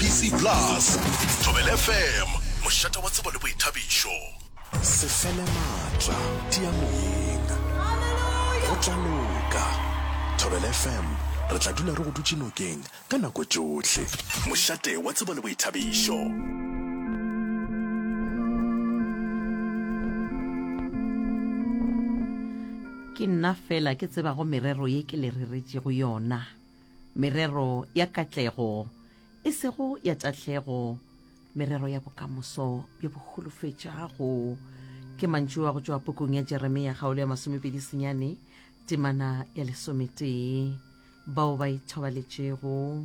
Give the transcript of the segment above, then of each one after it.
BC Plus, Thobela FM, mošate wa tsebo le boithabišo. Se fele maatla, tia moyeng. Go tla loka. Thobela FM, re tla dula re go dutše nokeng ka nako tšohle. Mošate wa tsebo le boithabišo. ke nna fela ke tsebago merero ye ke le reretšego yona merero ya katlego, e sego ya tahlego, merero ya bokamoso bjo bo holofetšago. Ke mantšu a go tšwa pukung ya Jeremia kgaolo ya masomepedi senyane temana ya lesometee. Bao ba ithobaletšego.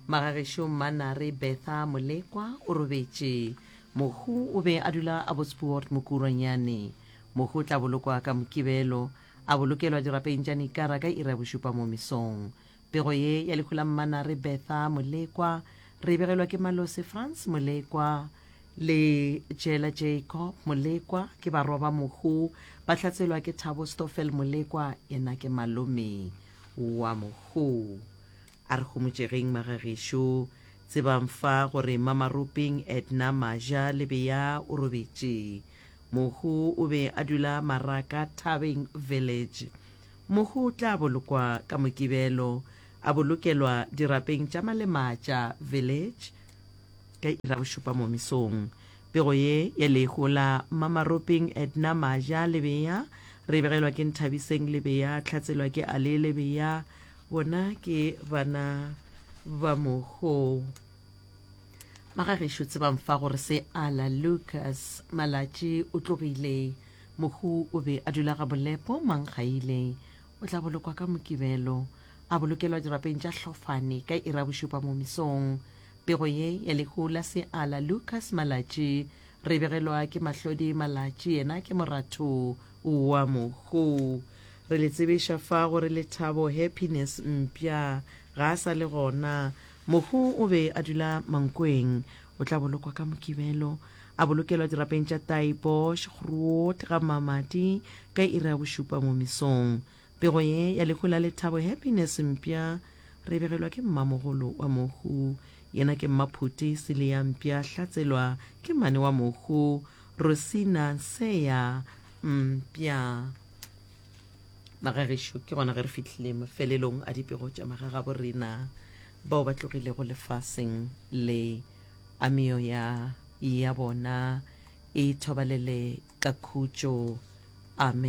Magagešo Mmanare Bertha Molekwa o robetše. Mohu o be a dula a botspuort Mokurwanyane. Mohu o tla bolokwa ka Mokibelo. a bolokelwa dirapeng tša Nikara ka iri ya bošupa mo mesong. Pego ye ya lehu la Mmana re Bertha Molekwa re e begelwa ke Malosi Frans Molekwa le Jela Jacob Molekwa ke barwa ba mohu, ba hlatselwa ke Thabo Stoffel Molekwa yena ke malome wa mohu. A re homotšegeng magagešo. Tsebang fa gore Mamaropeng Edna Maja Lebeya o robetše. Mohu o be a dula Maraka Thabeng Village. Mohu o tla bolokwa ka Mokibelo, a bolokelwa dirapeng tša Malematša Village ka iri ya bošupa mo mesong. Pego ye ya lehu la Mamaropeng Edna Maja Lebeya re e begelwa ke Nthabiseng Lebeya, tlhatselwa ke Ali Lebeya, bona ke bana ba mogou magagešo tsebang fa gore se ala lucas malatši o tlogile mohu o be a dula ga bolepo manggaile o tla bolokwa ka mokibelo a bolokelwa dirapeng tša hlofane ka ira bošupa mo misong pego ye ya lehu la se ala lucas malatši re begelwa ke mahlodi malatši yena ke moratho wa mohu Re le tsebiša fa gore Lethabo, Happiness, mpša ga a sa le gona. Mohu o be a dula Mankweng. O tla bolokwa ka Mokibelo. A bolokelwa dirapeng tša Taaibosch, Groot, ga Mmamati ka iri ya bošupa mo mesong. Pego ye ya lehu la Lethabo, Happiness, mpša re e begelwa ke mmamogolo wa mohu. Yena ke Mmaphuti Silia mpša Hlatselwa ke mmane wa mohu, Rosina Nseya mpša. magagešo ke gona ge re fitlhile mafelelong a dipego tša magagabo rena bao ba tlogilego lefaseng le ameo ya ya bona e thobalele ka khutšo amen